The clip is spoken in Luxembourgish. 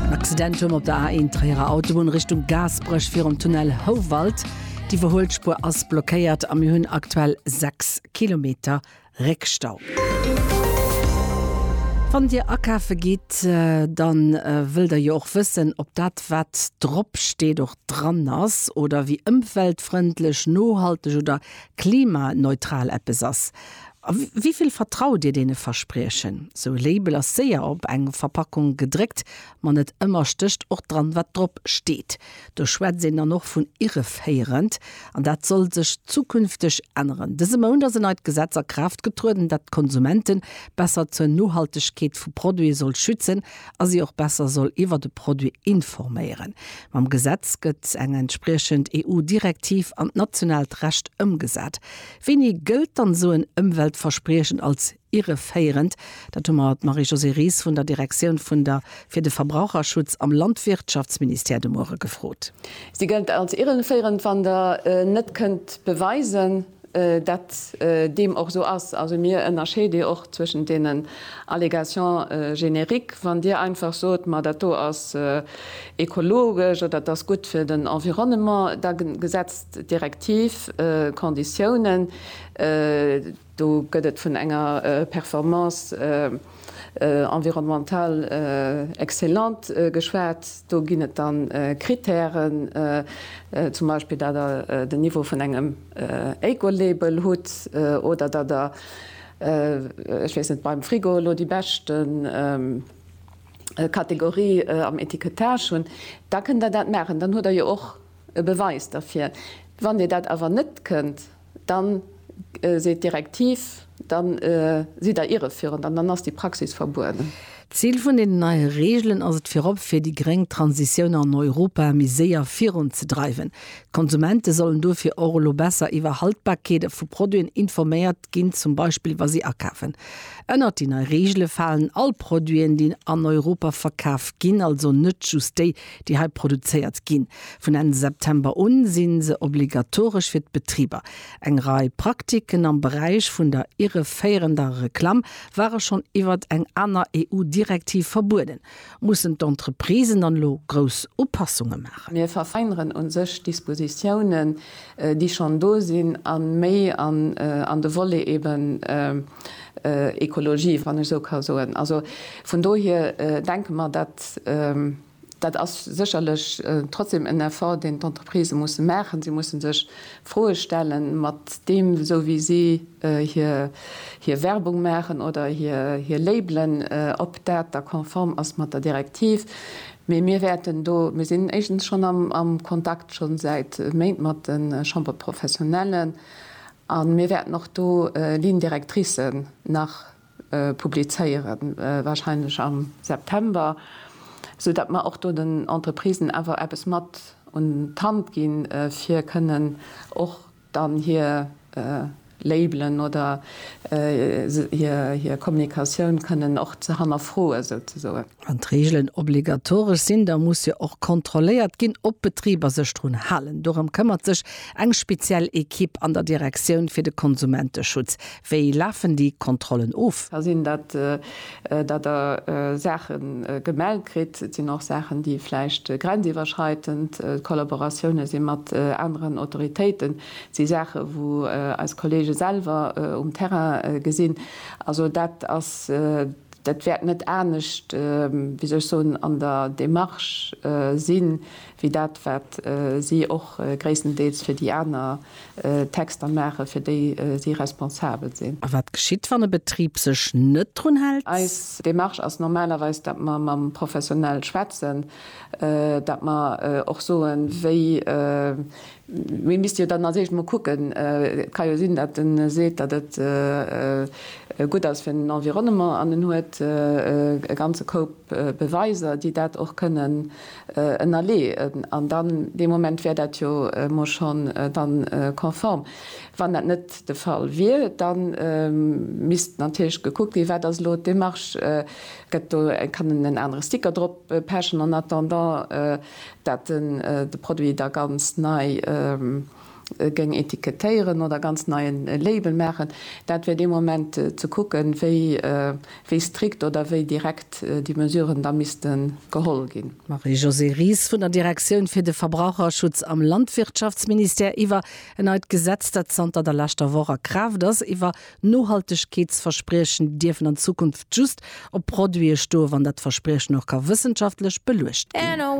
En Accident huet mer op der A1 Tréierer Autobunn Richtung Gaasperech virum Tunnel Houwald. D'Iwwerhuelspuer ass blockéiert a mir hunn aktuell 6 Kilometer Réckstau. Wann Dir akafe gitt, dann wëllt Der jo och wëssen, ob dat wat drop steet och dran ass oder wéi ëmweltfrëndlech, nohalteg oder klimaneutral eppes ass. A wéi vill vertraut Dir deene Verspriechen? Sou e Label ass séier op eng Verpackung gedréckt, ma net ëmmer stécht och dran, wat drop steet. Do schwätzt een dann och vun irreféierend. An dat soll sech zukünfteg änneren. Dëse Mount ass en neit Gesetz a Kraaft getrueden, dat d'Konsumente besser zur Nohaltegkeet vu Produite soll schützen a si och besser soll iwwer de Produit informéieren. Mam Gesetz gëtt eng entspriechend EU-Direktiv an d'nationaalt Recht ëmgesat. Wéini gëllt dann esou en Ëmweltverspriechen als irreféierend? Dat hu mer d'Marie-Josée Ries vun der Direktioun vun der fir de Verbraucherschutz am Landwirtschaftsministère de Muere gefrot. Si gëllt als irreféierend, wann Der net kënnt beweisen, datt deem och esou ass. Also mir ënnerscheede och zwëschent deenen Allégations génériques. Wann Dir einfach sot, ma dat do ass ekologesch oder et ass gutt fir den Environnement, da setzt. D'Direktiv Conditiounen, do gëtt et vun enger Performance environnementale excellente geschwat. Do ginn et da Krittären, zum Beispill datt Der den Niveau vun engem Ecolabel hutt oder datt Der, ech weess net, beim Frigo elo déi bescht Kategorie am Etikettage hunn. Da kënnt Der dat maachen. Dann hutt Der jo och e Beweis derfir. Wann Dir dat awer net kënnt, da seet d'Direktiv, da sidd Der irreführend an dann ass déi Praxis verbueden. D'Zil vun deenen neie Reegelen ass et virop, fir déi gréng Transitioun an Europa méi séier virunzedreiwen. D'Konsumente sollen dofir och elo besser iwwer Haltbarkeete vu Produiten informéiert ginn, zum Beispill wa si akafen. Ënnert déi nei Reegele falen all Produiten, déi an Europa verkaf ginn, also net just déi, déi hei produzéiert ginn. Vun Enn September un si se obligatoresch fir d'Betriber. Eng Rei Praktiken am Beräich vun der irreféierender Reklamm ware schonn iwwert eng aner EU-Direktiv verbueden. Mussen d'Entreprisen dann elo grouss Upassunge maachen? Mir verfeineren u sech Dispositiounen, déi schonn do sinn, a méi an de Volet eeben, Ekologie, wann ech esou ka soen. Also vun dohier denke mer, dat, dat ass sécherlech trotzdem en Effort, deen d'Entreprisë musse maachen. Si musse sech Froe stellen, mat deem, esou wéi si hir, hir Werbung maachen oder hir, hir Labelen, ob dat da konform ass mat der Direktiv. Mee mir wäerten do, mir sinn éischtens schonn am, am Kontakt, schonn säit Méint, mat de Chambre-professionnellen. A mir wäerten och do Lignes directricen nach publizéieren, wahrscheinlech am September, sou datt mer och do den Entreprisen awer eppes mat un d'Hand ginn, fir kënnen och dann hir Labelen oder hir Kommunikatioun kënnen och ze hannerfroen, souzesoen. Wann d'Reegelen obligatoresch sinn, da muss jo och kontrolléiert ginn, ob d'Betriber sech drun halen. Dorëm këmmert sech eng speziell Ekipp an der Direktioun fir de Konsumenteschutz. Wéi lafen déi Kontrollen of? Ka sinn, datt Der Saache gemellt kritt. Et sinn och Saachen, déi vläicht grenziwwerschreitend, Kollaboratioune si mat aneren Autoritéiten, et si Saache wou eis Kollege selwer um Terrain gesinn. Also dat ass Dat wäert net anescht, wéi soll ech soen, an der Démarche sinn, wéi dat wat si och gréisstendeels fir déi aner Texter maachen, fir déi si responsabel sinn. A wat geschitt, wann e Betrib sech net drun hält? Eis Démarche ass normalerweis, datt mer mam Professionell schwätzen, datt mer och soen, wéi Mir misste jo dann als éischt mol kucken, et ka jo sinn, datt en seet, datt et gutt ass fir den Environnement an en huet e ganze Koup Beweiser, déi dat och kënnen ënnerleeën, an dann dee Moment wär dat jo mol schonn dann konform. Wann dat net de Fall wier, da misst natierlech gekuckt ginn, wat ass elo d'Démarche, gëtt do, kann en en anere Sticker drop pechen en attendant. dat en de Produit da ganz nei géing etikettéieren oder ganz nei en Label maachen, dat wär dee Moment ze kucken, wéi strikt oder wéi direkt déi Mesuren da misste geholl ginn. Marie-Josée Ries vun der Direktioun fir de Verbraucherschutz am Landwirtschaftsministère iwwer en neit Gesetz, dat zanter der leschter Woch a Kraaft ass, iwwer Nohaltegkeetsverspriechen, déi dierfen an Zukunft just op Produite stoe wann dat Verspriechen och ka wëssenschaftlech beluecht ginn.